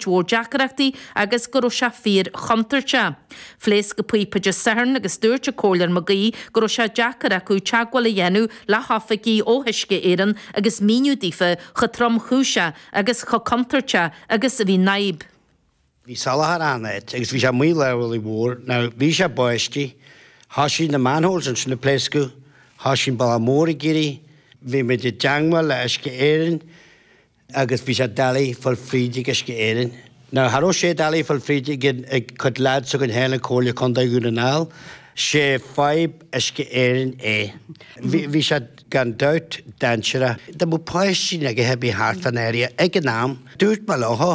mhór deacrachtaí agus go raibh sé fíor chontúirteach. Phléasc an píopa Dé Sathairn agus dúirt an Comhairleoir Mag Aoidh go raibh sé deacair acu teagmháil a dhéanamh le hoifigigh ó Uisce Éireann agus míniú daofa chomh tromchúiseach agus chomh contúirteach agus a bhí an fhadhb. Bhí salachar achan áit agus bhí sé amuigh i lár an bhealaigh mhóir. Now bhí sé báistí, thoisigh na manholes ansin ag pléascadh, thoisigh an bealach mór ag éirí, bhí muid i dteagmháil le Uisce Éireann, agus bhí sé doiligh fáil fríd ag Uisce Éireann. Now cha raibh sé doiligh fáil fríd ag cuid lads againn féin in Comhairle Contae Dhún na nGall. Sé fadhb Uisce Éireann é. Bhí, bhí sé gan dabht dainséarach. Dá mbeadh páistí nó cibé thart fán area ag an am, dúirt mé leo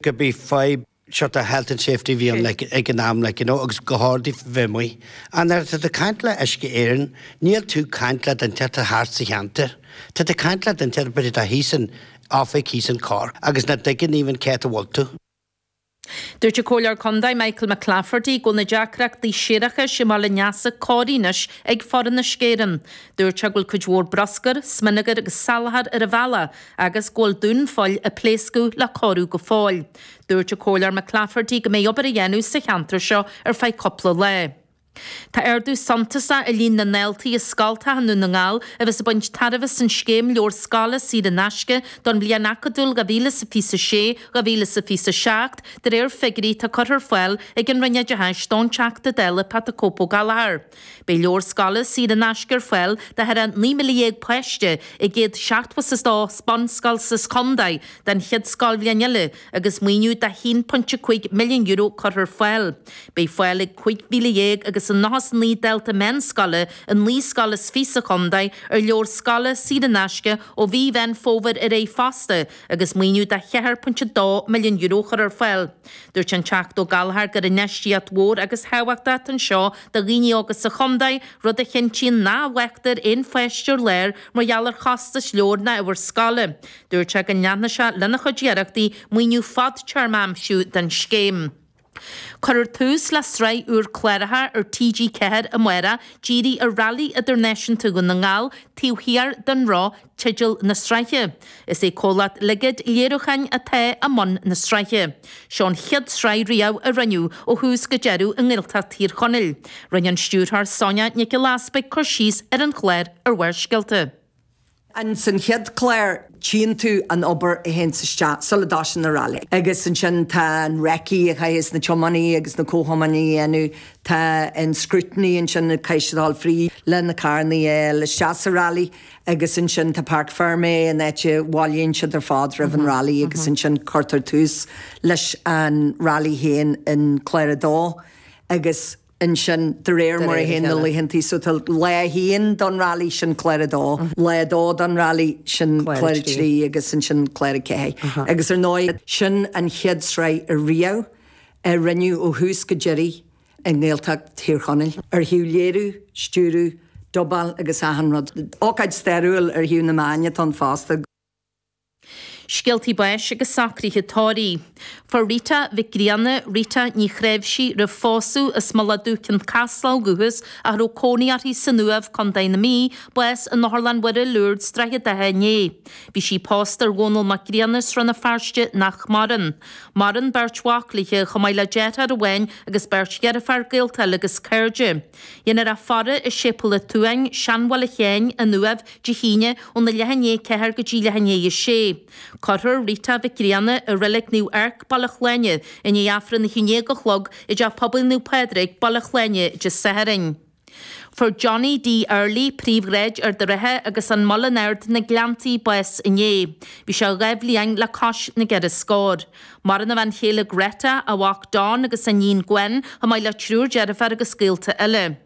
gurb í fadhb, sort of health and safety bhí ann ag an am you know agus gur cheart daofa bheith amuigh. Nuair atá tú ag caint le Uisce Éireann? Níl tú ag caint le duine inteacht thart sa cheantar. Tá tú ag caint le duine inteacht b'fhéidir atá thíos in oifig thíos in Cork agus nach dtuigeann even cá háit a bhfuil tú. Dúirt an Comhairleoir Contae Michael McClafferty go bhfuil na deacrachtaí séarachais i mBaile an Easa cóirithe anois ag foireann Uisce Éireann. Dúirt sé go bhfuil cuid mhór bruscair, smionagar agus salachar ar an bhealach agus go bhfuil dúnphoill a pléascadh le cóiriú go fóill. Dúirt an Comhairleoir McClafferty go mbeidh obair á dhéanamh sa cheantar seo ar feadh cúpla lá. Tá ardú suntasach i líon na ndaltaí i scoltacha i nDún na nGall a bheas ag baint tairbhe as an scéim leabhar scoile saor in aisce don bhliain acadúil 2026, 2027, de réir figiúirí atá curtha ar fáil ag an Roinn Oideachais don Teachta Dála Pat the Cope Ó Gallchóir. Beidh leabhar scoile saor in aisce ar fáil do thar 19,000 páiste i 100 seachtmhasastá is bunscoil sa chontae don chéad scoilbhliain eile agus maoiniú de €1.5 milliún curtha ar fáil. Beidh fáil ag 15,000 agus an 99 dalta meánscoile i naoi scoil is fiche sa chontae ar leabhair scoile saor in aisce ó mhí Mheán Fómhair ar aghaidh fosta agus maoiniú de €4.2 milliún curtha ar fáil. Dúirt an Teachta Ó Gallchóir gur infheistíocht mhór agus thábhachtach atá anseo do dhaoine óga sa chontae, rud a chinntíonn nach bhfágtar aon pháiste ar lár mar gheall ar chostas leabhar ná ábhar scoile. Dúirt sé go leanfaidh sé lena chuid iarrachtaí, maoiniú fadtéarma a aimsiú don scéim. Cuirfear tús le sraith úr cláracha ar TG4 amárach dírithe ar Rally Idirnáisiúnta Dhún na nGall Taobh Thiar den Roth teideal na sraithe. Is é comhlacht Ligid Léiriúcháin atá i mbun na sraithe. Seo an chéad sraith riamh a rinneadh ó thús go deireadh i nGaeltacht Thír Chonaill. Rinne an stiúrthóir Sonia Nic Giolla Easbuig cur síos ar an chlár ar Bharrscéalta. In san chéad clár tchíonn tú an obair a théanns isteach sula dtoisíonn an rally. Agus ansin tá an recce a chaitheas na tiománaí agus na comhthiománaí a dhéanamh, tá an scrutiny ansin a chaitheas siad a dhul fríd le na carrannaí a fháil isteach sa rally. agus ansin tá parc fermé an áit a bhailíonn siad ar fad roimh an rally agus ansin cuirtear tús leis an rally féin in clár a dó agus ansin de réir mar a théann na laethantaí so tá lá a haon don rally sin clár a dó, lá a dó don rally sin clár a trí agus ansin clár a ceathair agus ar ndóigh sin an chéad sraith a riamh a rinneadh ó thús go deireadh i nGaeltacht Thír Chonaill, ar thaobh léiriú, stiúrú, dubáil agus achan rud. Ócáid stairiúil ar thaobh na meáin atá ann fosta. Scéaltaí báis agus socruithe tórraimh. Fuair Rita Mhic Grianna, Rita Ní Chnáimhsí, roimh phósadh as Mullach Dubh, Chionn Caslach ó dhúchas a raibh cónaí uirthi san Uaimh, Co. na Mí, bás in Otharlann Mhuire, Lourdes, Droichead Átha inné. Bhí sí pósta ar Dhónall Mac Grianna as Rann na Feirste nach maireann. Maireann beirt mhac léithe chomh maith le deartháir amháin agus beirt dheirféar gaolta eile agus cairde. Déanfar í a fhaire i Séipéal an tSuain, Seanbhaile Sheáin, An Uaimh, Dé hAoine, óna leath i ndiaidh a 4 go dtí leath i ndiaidh a 6. Cuirfear Rita Mhic Grianna i Reilig Naomh Eirc, Baile Shláine, i ndiaidh Aifreann a haon déag a chlog i dTeach Pobail Naomh Pádraig, Baile Shláine, Dé Sathairn. Fuair Johnny Dee Early Príomhshráid, Ard an Rátha agus An Muileann Ard, Na Gleanntaí bás inné. Bhí sé dhá bhliain le cois na gceithre scór. Maireann a bhean chéile Greta, a mhac Don agus a iníon Gwen, chomh maith le triúr deirféar agus gaolta eile.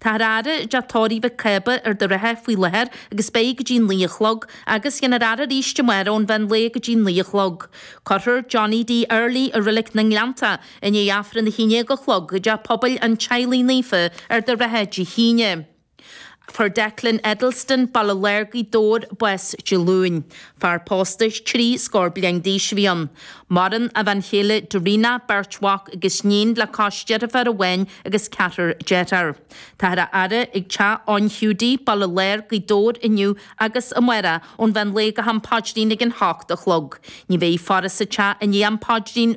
Táthar á fhaire i dTeach Tórraimh Mhic Cába, Ard an Rátha faoi láthair agus beidh go dtí naoi a chlog, agus déanfar é a fhaire arís amárach ón mheán lae go dtí naoi a chlog. Cuirfear Johnny Dee Early i Reilig na nGleannta, I ndiaidh Aifreann a haon déag a chlog, i dTeach Pobail an Teaghlaigh Naofa Ard an Rátha Dé hAoine. Fuair Declan Edleston, Baile Láir, Gaoth Dobhair, bás Dé Luain. Fear pósta trí scór bliain d'aois a bhí ann. Maireann a bhean chéile Dorina, beirt mhac agus níon le cois deirfiúr amháin agus ceathrar dearthár. Táthar á fhaire ag Teach Eoin Hiúdaí, Baile Láir, Gaoth Dobhair inniu agus amáireach. Ón mheán lae go ham paidrín ag an hocht a chlog. Ní bheidh faire sa teach i ndiaidh am paidrín.